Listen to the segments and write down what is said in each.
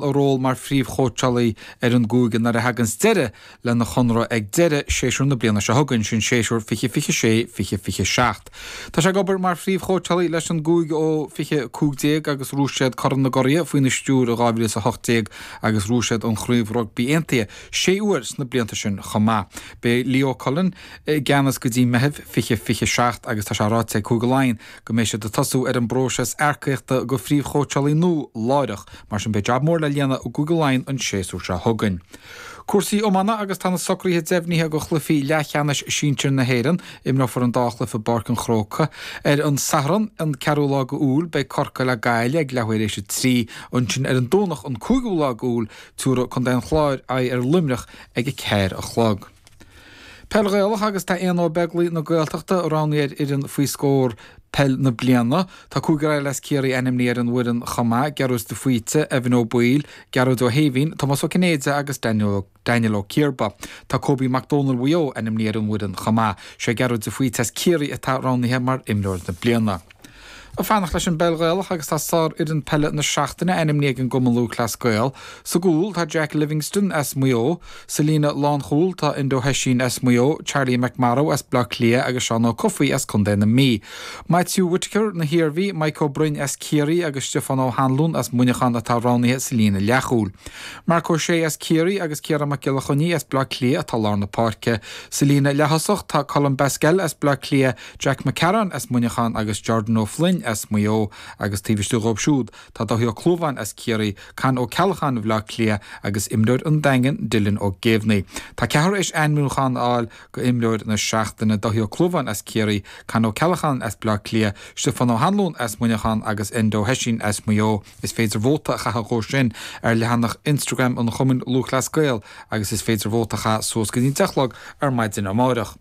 a ról mar phríomhchóitseálaí ar an gcúige nuair a thagann deireadh lena chonradh ag deireadh séasúr na bliana seo chugainn, sin séasúr 2026, 2027. Tá sé ag obair mar phríomhchóitseálaí leis an gcúige ó 2015 agus bhuaigh siad Corn na gCuradh faoina stiúir in 2018 agus bhuaigh siad an Chraobh Rugbaí Aontaithe sé uair sna blianta sin chomh maith. Beidh Leo Cullen i gceannas go dtí Meitheamh 2027 agus tá sé ráite ag Cúige Laighean go mbeidh siad ag tosú ar an bpróiseas earcaíochta go phríomhchóitseálaí nua láithreach, mar sin beidh jab mór le líonadh i gCúige Laighean an séasúr seo chugainn. Cúrsaí iomána agus tá na socruithe deimhnithe do chluichí leathcheannais sinsir na hÉireann. Imreofar an dá chluiche i bPáirc an Chrócaigh. Ar an Satharn, an ceathrú lá go Iúil, beidh Corcaigh le Gaillimh ag leath huaire éis a trí. Ansin ar an Domhnach, an cúigiú lá go Iúil, tiúrfaidh contae an Chláir aghaidh ar Luimneach ag a ceathair a chlog. Peil Ghaelach agus tá Éanna Ó Beaglaoi na Gaeltachta roghnaithe ar fhoireann Faoi Scór Peil na Bliana. Tá cúigear eile as Ciarraí ainmnithe ar an bhfoireann chomh maith, Gearóid de Faoite, Evan Ó Baoill, Gearóid Ó hÉimhín, Tomás Ó Cinnéide agus Daniel Ó Ciarba. Tá Cobie Mac Domhnaill Mhaigh Eo ainmnithe ar an bhfoireann chomh maith. Sé Gearóid de Faoite as Ciarraí atá roghnaithe mar imreoir na bliana. Ag fanacht leis an bpeil Ghaelach agus tá sárfhoireann peile na seachtaine ainmnithe ag an gCumann Lúthchleas Gael. Sa gcúl, tá Jack Livingstone as Maigh Eo. Sa líne lánchúil, tá Enda Ó hOisín as Maigh Eo, Charlie McMorrow as Baile Átha Cliath agus Seán Ó Cofaigh as contae na Mí. Maitiú Whitaker na hIarmhí, Mike Ó Broin as Ciarraí agus Stiofán Ó hAnluain as Muineachán atá roghnaithe sa líne leathchúil. Marc Ó Sé as Ciarraí agus Ciarán Mac Giolla Choinnigh as Baile Átha Cliath atá lár na páirce. Sa líne leaththosach, tá Colm Basquel as Baile Átha Cliath, Jack Mac Cearáin as Muineachán agus Jordan Ó Floinn as Maigh Eo agus taobh istigh dhóibh siúd, tá Dáithí Ó Clúmháin as Ciarraí, Con Ó Ceallacháin Bhleá Cliath agus imreoir an Daingin, Dylan Ó Géibhní. Tá ceathrar éis ainmniúchán a fháil go imreoir na seachtaine, Dáithí Ó Clúmháin as Ciarraí, Con Ó Ceallacháin as Bleá Cliath, Stiofán Ó hAnluain as Muineachán agus Enda Ó hOisín as Maigh Eo. Is féidir vóta a chaitheadh dhó sin ar leathanach Instagram an Chumainn Lúthchleas Gael agus is féidir vóta a chaitheadh suas go dtí an deich chlog ar maidin amáireach.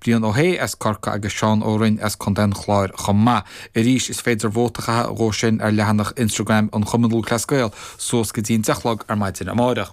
Brian Ó hAodha as Corcaigh agus Seán Ó Rinn as Co. an Chláir chomh maith. Arís, is féidir vóta a chaitheamh dhó sin ar leathanach Instagram an Chumainn Lúthchleas Gael suas go dtí'n deich a chlog ar maidin amárach.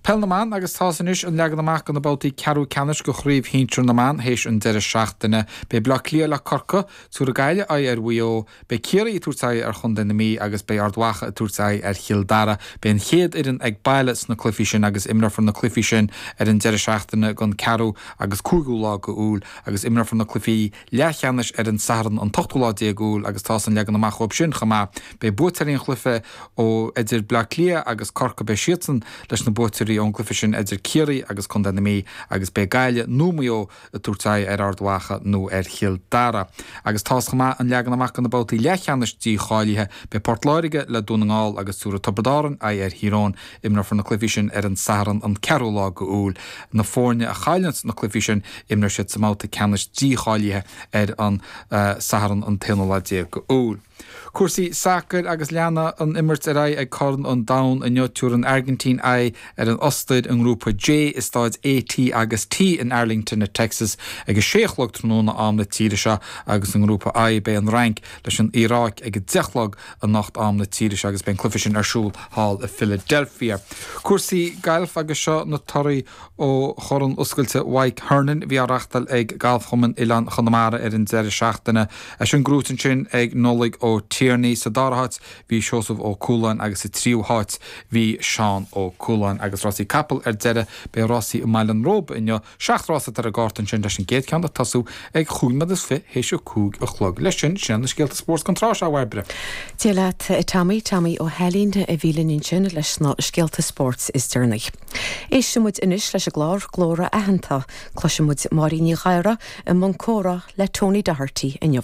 Peil na mBan agus tá's anois an leagan amach do na babhtaí ceathrú ceannais de chraobh shinsir na mban théis an deireadh seachtaine. Beidh Bleá Cliath le Corcaigh. Tiúrfaidh Gaillimh aghaidh ar Mhaigh Eo, beidh Ciarraí ag tabhairt aghaidh ar chontae na Mí agus beidh Ard Mhacha ag tabhairt aghaidh ar Chill Dara. Beidh an chéad fhoireann ag baile sna cluichí sin agus imreofar na cluichí sin ar an deireadh seachtaine den 4ú agus 5ú lá d'Iúil agus imreofar na cluichí leathcheannais ar an Satharn an t-ochtú lá déag d'Iúil agus tá an leagan amach dhóibh sin chomh maith. Beidh buaiteoirí an chluiche idir Bleá Cliath agus Corcaigh beidh siadsan leis na buaiteoirí ón gcluiche sin idir Ciarraí agus contae na Mí agus beidh Gaillimh nó Maigh Eo tabhairt aghaidh ar Ard Mhacha nó ar Chill Dara. Agus tá a fhios chomh maith an leagan amach do na babhtaí leathcheannais dícháilithe. Beidh Port Láirge le Dún na nGall agus tabharfaidh Tiobraid Árann aghaidh ar Thír Eoghain. Imreofar na cluichí sin ar an Satharn an 4ú lá de Iúil. Na foirne a chailleanns na cluichí sin, imreoidh siad sa mbabhta ceannais dícháilithe ar an Satharn an t-aonú lá déag de Iúil. Cúrsaí sacair agus leanfaidh an imirt ar aghaidh ag Corn an Domhain inniu tabharfaidh an Airgintín aghaidh ar an Ostair i nGrúpa J i stáid A T agus T in Arlington i Texas ag a sé a chlog tráthnóna am na tíre seo agus i nGrúpa I beidh an Fhrainc leis an Iaráic ag a deich a chlog anocht am na tíre seo agus beidh an cluiche sin ar siúl thall i Philadelphia. Cúrsaí gailf agus seo na torthaí. Ó Chorn Oscailte Mhaidhc Hernon a bhí á reachtail ag Galfchumann Oileán Chonamara ar an deireadh seachtaine. Leis an gcrúit ansin ag Nollaig Ó Tiarnaigh. Sa dara háit bhí Seosamh Ó Cualáin agus sa tríú háit bhí Seán Ó Cualáin. Agus rásaí capall ar deireadh, beidh rásaí i mBaile an Róba inniu. Seacht rása atá ar an gcárta ansin leis an gcéad cheann ag tosú ag cúig nóiméad is fiche théis a cúig a chlog. Leis sin, sin iad na scéalta spóirt don tráth seo, a Bhairbre. Dia leat, a Tommy, Tommy Ó hAilín a bhí linn ansin leis na scéalta spóirt is deireanaí. Éistfidh muid anois leis an gclár Glór Aitheanta. Cloisfidh muid Máirín Ní Ghadhra i mbun comhrá le Tony Doherty inniu.